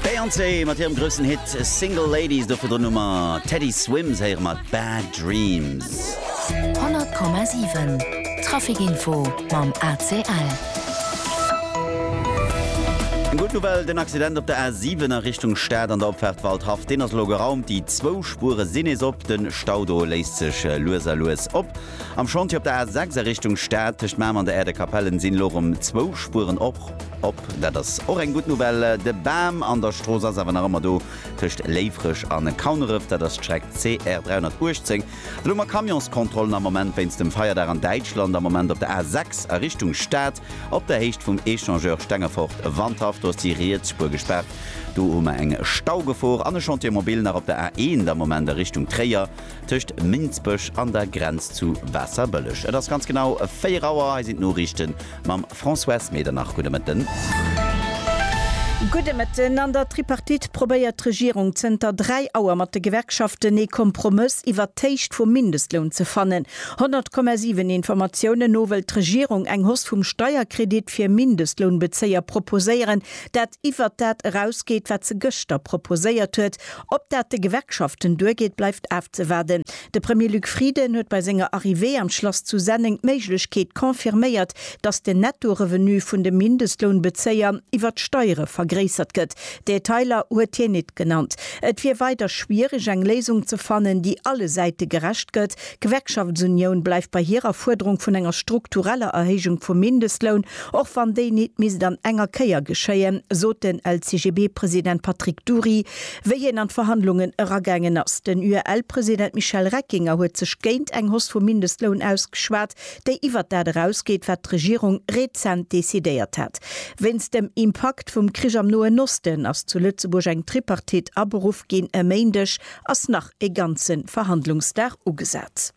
D'Beyoncé mat hirem groussen Hit Single Ladies, do virdrun hu mer Teddy Swims, héiere mer Bad Dreams. 100,7 Trafic-Info mam ACL. Gutt Nouvelle, den Accident op der A7 a Richtung Stad an der Opfaart Waldhaff, deen ass elo geraumt. Déi zwou Spuere sinn nees op, de Stau do léisst sech lues a lues op. Am Chantier op der A 6 a Richtung Stad tëscht Mamer an der Aire de Capellen sinn elo rem zwou Spueren och op. Dat ass och eng gutt Nouvelle. De Bam an der Strooss ass awer nach ëmmer do. Tëscht Léifreg an Kauneref, dat ass d'Streck CR 318, elo mat Camionskontrollen am Moment wéinst dem Feierdag an Däitschland. Am Moment op der A 6 a Richtung Stad op der Héicht vum Echangeur Stengefort Wandhaff, do ass déi riets Spuer gespaart. Do hu mer eng Staugefor an e Chantier mobile nach op der A 1 am Moment a Richtung Tréier. Tëscht Minsbech an der Grenz zu Waasserbëlleg. Et ass ganz genau 4 Auer. Hei sinn d'Noriichten mam Françoise Medernach. Gudde Mëtten. Gudde Mëtten. An der Tripartite probéiert d'Regierung zënter 3 Auer mat de Gewerkschaften ee Kompromëss iwwert d'Héicht vum Mindestloun ze fannen. 100,7 Informatiounen no wëllt d'Regierung eng Hausse vum Steierkredit fir Mindestlounbezéier proposéieren, dat iwwert dat erausgeet, wat se gëschter proposéiert huet. Ob dat de Gewerkschaften duergeet, bleift afzewaarden. De Premier Luc Frieden huet bei senger Arrivée am Schlass zu Senneng d'Méiglechkeet confirméiert, datt den Netto-Revenu vun de Mindestlounbezéier iwwer d'Steiere vergréissert gëtt. Detailer huet hien nit genannt. Et wier weider schwiereg eng Léisung ze fannen, déi alle Säite gerecht gëtt, D'Gewerkschaftsunioun bleift bei hirer Fuerderung vun enger struktureller Erhéijung vum Mindestloun, och wann déi nit misst an enger Kéier geschéien, sot den LCGB-President Patrick Dury, wéi hien an d'Verhandlungen eragaangen ass. Den UEL-President Michel Reckinger huet sech géint eng Hoss vum Mindestloun ausgeschwat, déi iwwert dat erausgeet, wat d'Regierung rezent decidéiert hat. Wéinst dem Impakt vum Krich am Noen Osten ass zu Lëtzebuerg eng Tripartite aberuff ginn e Méindeg. Ass nach. ee ganze Verhandlungsdag ugesat.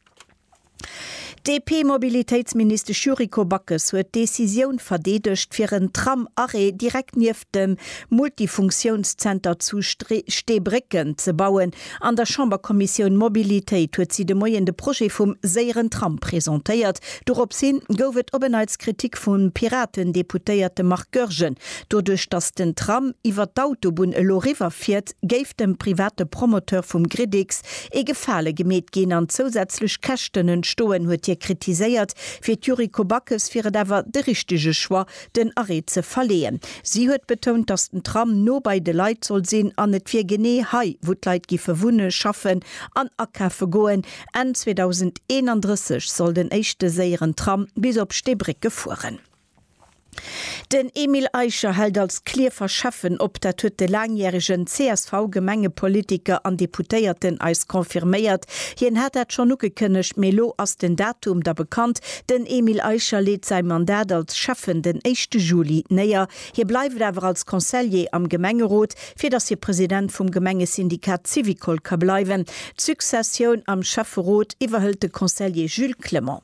D'DP-Mobilitéitsministesch Yuriko Backes huet d'Decisioun verdeedegt, fir en Tram-Arrêt direkt nieft dem Multifunktiounszenter zu Steebrécken ze bauen. An der Chamberkommissioun Mobilitéit huet si de Moien de Projet vum séieren Tram presentéiert. Dorops hi gouf et op en Neits Kritik vum Piraten-Deputéierte Marc Goergen. Doduerch, datt den Tram iwwer d'Autobunn elo riwwer fiert, géif dem private Promoteur vum Gridix ee Gefale gemeet ginn an zousätzlech Käschten entstoen, huet hie kritiséiert. Fir d'Yuriko Backes wier et awer de richtege Choix, den Arrêt ze verleeën. Si huet betount, datt den Tram no bei de Leit soll sinn an et wier genee hei, wou d'Leit giffe wunne, schaffen an akafe goen. Enn 2031 soll den éischte séieren Tram bis op Steebrécke fueren. Den Emile Eicher hält als Clierfer Schäffen op, dat huet de laangjäregen CSV-Gemengepolitiker an Deputéierten eis confirméiert. Hien hat dat schonn ugekënnegt, mee elo ass den Datum da bekannt, Den Emile Eicher leet säi Mandat als Schäffen den éischte Juli néier. Hie bleift awer als Consellier am Gemengerot, fir datt hie President vum Gemengesyndikat Syvicol ka bleiwen. D'Successioun am Schäfferot iwwerhëlt de Consellier Jules Clement.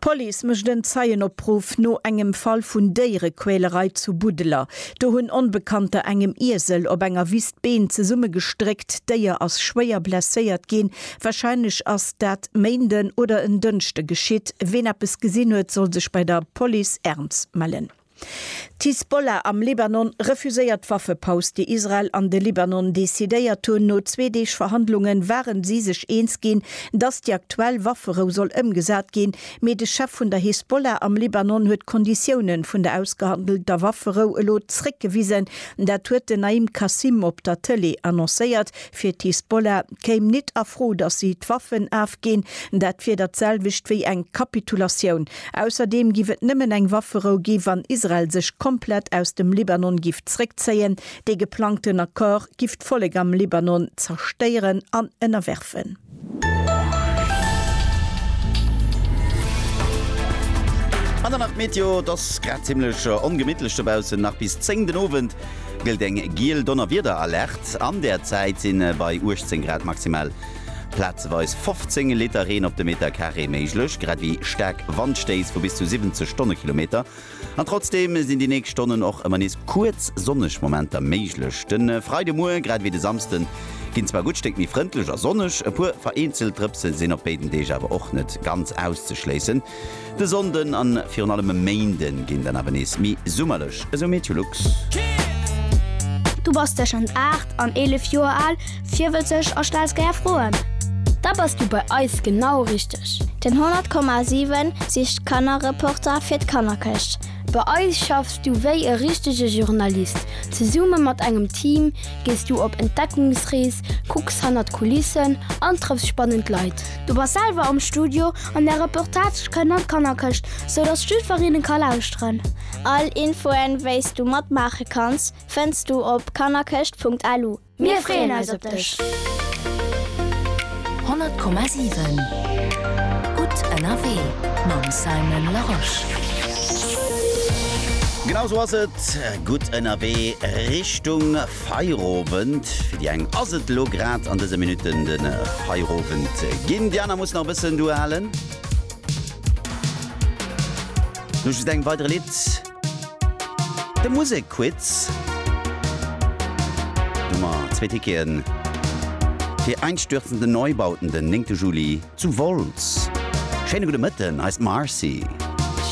D'Police mécht en Zeienopruff no engem Fall vun Déierequälerei zu Budeler. Do hunn Onbekannter engem Iesel op enger Wiss d'Been zesummegestréckt. D'Déier ass schwéier blesséiert ginn. Warscheinlech ass dat Méinden oder en Dënschde geschitt. Ween eppes gesinn huet, soll sech bei der Police Erms mellen. D'Hisbollah am Libanon refuséiert d'Waffepaus, déi Israel an de Libanon decidéiert hunn. No zwee Deeg Verhandlunge ware si sech eens ginn, datt déi aktuell Wafferou soll ëmgesat ginn. Mee de Chef vun der Hisbollah am Libanon huet d'Konditioune vun der ausgehandelter Wafferou elo zréckgewisen. Dat huet den Naim Qassem op der Tëlee annoncéiert, Fir d'Hisbollah kéim nit a Fro, datt si d'Waffen afginn. Dat wier dat selwecht wéi eng Kapitulatioun. Ausserdeem giff et nëmmen eng Wafferou gi wann Israel sech komplett aus dem Libanon giff zréckzéien. Dee geplangten Accord giff d'Vollek am Libanon zerstéieren an ënnerwerfen. An dann nach d'Meteo, et ass grad zimmlech ongemittlech dobaussen, nach bis 10 den Owend gëllt eng giel Donnerwiederalerte. An der Zäit si bei 18 Grad maximal plazeweis 15 Liter Reen op de Meterkaree méiglech, grad ewéi staark Wandstéiss vu bis zu 70 Stonnekilometer. An trotzdeem sinn déi nächst Stonnen och ëmmer nees kuerz sonneg Momenter méiglech. De Freidemuer, grad ewéi de Samsde, ginn zwar e gutt Stéck méi frëndlech a sonneg, e puer vereenzelt Drëpse sinn op béiden Deeg awer och net ganz auszeschléissen. De Sonnde a virun allem e Méinde ginn dann awer nees méi summerlech, esou Meteolux. Du bass tëschent 8 an 11 Joer al Virwëtzeg a stells gär Froen? Da bass du bei eis genau richteg! Den 100,7 sicht Kannerreporter fir d'Kannerkëscht. Bei eis schaffs du wéi e richtege Journalist. Zesumme mat engem Team gees du op Entdeckungsrees, kucks hannert d'Kulissen an trëffs spannend Leit. Du bass selwer am Studio an där Reportage kënnt an d'Kannerkëscht, sou dass jiddwereen ka lauschteren. All Infoen, wéis du matmaache kanns, fënns du op kannerkëscht.lu. Mir freeën eis op dech! 100,7 Gutt ënnerwee mam Simon Larosche. Genau esou ass et, gutt ënnerwee Richtung Feierowend. Fir déi eng ass et elo grad an dëse Minutten de Feierowend ginn, déi aner mussen nach e bëssen duerhalen. No just engem weidere Lidd. De Musekquiz, wou mer zwee Ticketen fir Einstürzende Neubauten den 9 Juli zu Wolz. Schéine gudde Mëtten, hei ass d'Marcy.